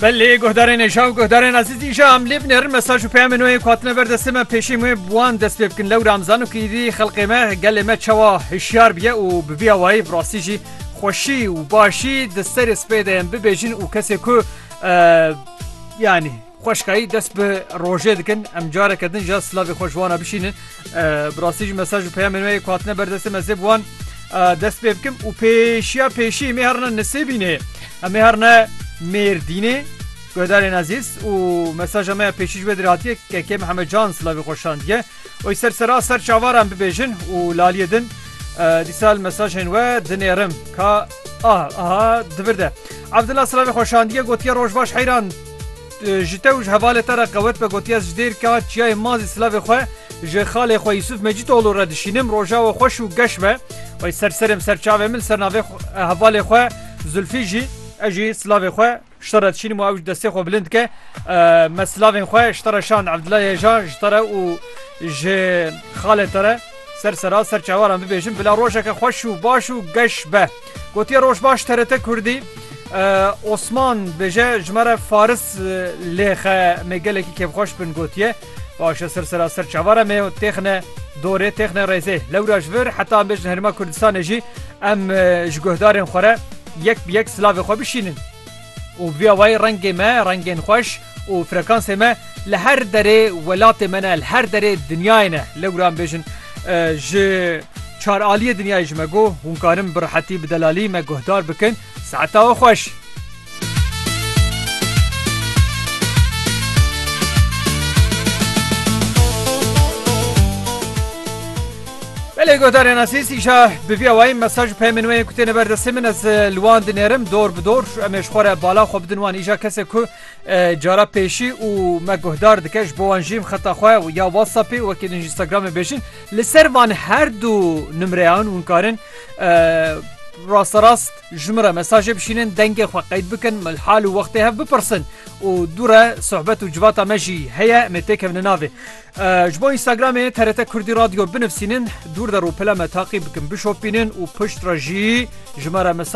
Belê guhdarên êşan guhdarên ezîzî ji em lê binêrin mesaj û peyamên wê hatine ber destê me pêşî wê bi wan dest pê bikin lewra em zanin ku êdî xelqê me gelê me çawa hişyar biye û bi vî awayî bi rastî jî xweşî û başî di serê spê de yên bibêjin û kesê ku yanî Xweşkayî dest bi rojê dikin. Em careke din jî silavê xwe ji wan re bişînin. Bi rastî jî mesaj û peyamên wê yê ku hatine ber destê me zê bi wan dest pê bikim û pêşiya pêşî em ê herine Nisêbînê, em ê herine Mêrdînê guhdarên ezîz û mesaja me ya pêşî ji wê derê hatiye KK Mihemed Can silavê xwe şandiye. Oy ser sera ser çavar em bibêjin û laliyê din dîsa li mesajên we dinêrim ka ah aha di vir de. Evdila silavê xwe şandiye gotiye roj baş heyran. Ji te û ji hevalê te re qewet be gotiye ez ji dêr ka çiyayê Mazî Silavê xwe ji xalê xwe Yusuf Mecîtoglû re dişînim. Rojawe xweş û geş be. Wey ser serê min ser çavê min li ser navê hevalê xwe Zulfî jî. Ez jî silavê xwe ji te re dişînim û ew jî destê xwe bilind dike. Me silavên xwe ji te re şand Evdila Yeja ji te re û ji xalê te re ser sera ser çawaran bibêjim bila rojeke xweş û baş û geş be. Gotiye Rojbaş TRT Kurdî Osman bêje ji me re faris lêxe me gelekî kêfxweş bin gotiye başe ser sera ser çavara me û têxine dorê têxine rêzê lewra ji vir heta em bêjin herima Kurdistanê jî em ji guhdarên xwe re yek bi yek silavê xwe bişînin. û bi vîya wayî rengê me rengên xweş û frekansê me li her derê welatê me ne, li her derê dinyayê ne. Lewra em bêjin ji çar aliyê dinyayê ji me got, hûn karin bi rehetî bi delalî me guhdar bikin. Saeta we xweş. Belê guhdarên esîs îşa bi vî awayî mesaj û peyamên wê yên ku têne ber destê min ez li wan dinêrim dor bi dor em ê ji xwe re bala xwe bidin wan îşa kesê ku Cara pêşî û me guhdar dike ji bo wan jî xeta xwe ya WhatsAppê wekî din Instagramê bêjin li ser van her du nimreyan hûn karin rasta rast ji min re mesajê bişînin dengê xwe qeyd bikin mil hal û wextê hev bipirsin û dû re sohbet û civata me jî heye me têkevne navê ji bo Instagramê TRT Kurdî radyo binivîsînin dûr der û pile me taqî bikin bişopînin û pişt re jî ji me re mesaj